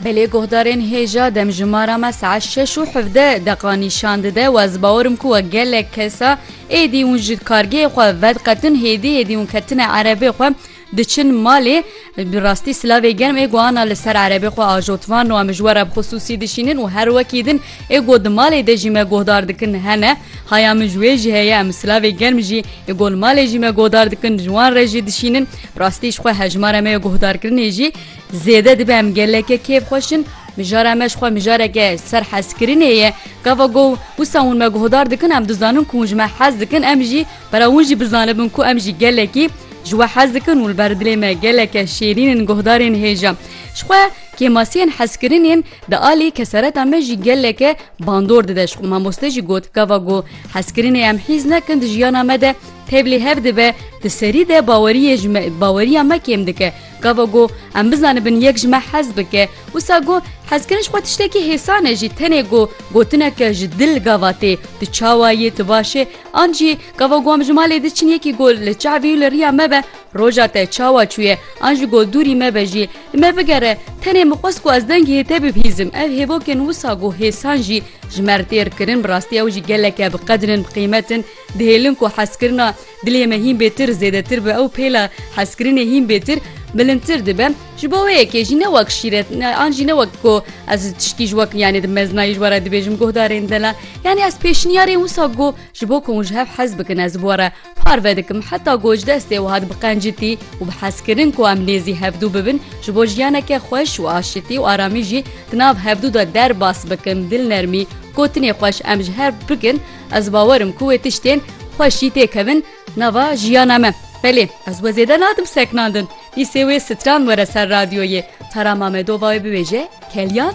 Belê guhdarên hêja demjimara me saet şeş û hevdeh deqa nîşan dide û ez bawer im ku we gelek kesa êdî hûn ji kargehê xwe vediqetin hêdî hêdî hûn ketine erebê xwe diçin malê bi rastî silavê germ ê guhana li ser erebê xwe ajotvan û em ji we re bi xisûsî dişînin û her wekî din ê got di malê de jî me guhdar dikin hene haya min ji wê jî heye em silavê germ jî ê got li malê jî me guhdar dikin ji wan re jî dişînin Rastî ji xwe hejmara me ya guhdarkirinê jî zêde dibe em geleke kêfxweş in, mijara me ji xwe mijareke serhezkirinê ye. Gava ku wisa hûn me guhdar dikin em dizanin ku hûn ji me hez dikin em jî pera hûn jî bizanibin ku em jî gelekî ji we hez dikin û li ber dilê me geleke şêrîn in guhdarên hêja ji xwe kêmasiyên hezkirinên di alî kesereta me jî geleke bandor dide ji xwe. Mamoste jî got gava ku hezkirinê em hîz nekin di jiyana me de Tevlî hev dibe di serî de baweriyê ji me baweriya me kêm dike. Gava got em bizanibin yek ji me hez bike. Wisa got hezkirin ji xwe tiştekî hêsan e jî tenê got gotineke ji dil gava tê tu çawa yî tu baş î an jî gava got em ji malê diçin yekî got li çavî û li riya me be roja te çawa çûye an ji got dûrî me be jî li me bigere tenê min xwest ku ez dengê hê te bibihîzim ev hêvokên wisa got hêsan jî ji me re têr kirin bi rastî ew jî geleke bi qedirin bi qîmetin Dihêlin ku hezkirina dilê me hîn bêtir zêdetir bi ew pêla hezkirinê hîn bêtir bilindtir dibe. Ji bo wê yekê jî ne wek şîret ne an jî ne wek ku ez tişkî ji wek yanê di meznayî ji we re dibêjim guhdarên dela. Yanî ez pêşniyarên wisa got ji bo ku hûn ji hev hez bikin ez bi we re parve dikim heta ku ji destê wiha dibiqencitî û bi hezkirin ku em nêzî hevdû bibin ji bo jiyaneke xweş û aşitî û aramî jî di nav hevdû de derbas bikim dilnermî gotinê xweş em ji hev bikin Ez bawer im ku wê tiştên xweş jî tê kevin nava jiyana me. Belê, ez we zêde nadim seknandin. Dîsê wê stran were ser radyoyê. Tara Mamedova wê biwêje, Kelyan?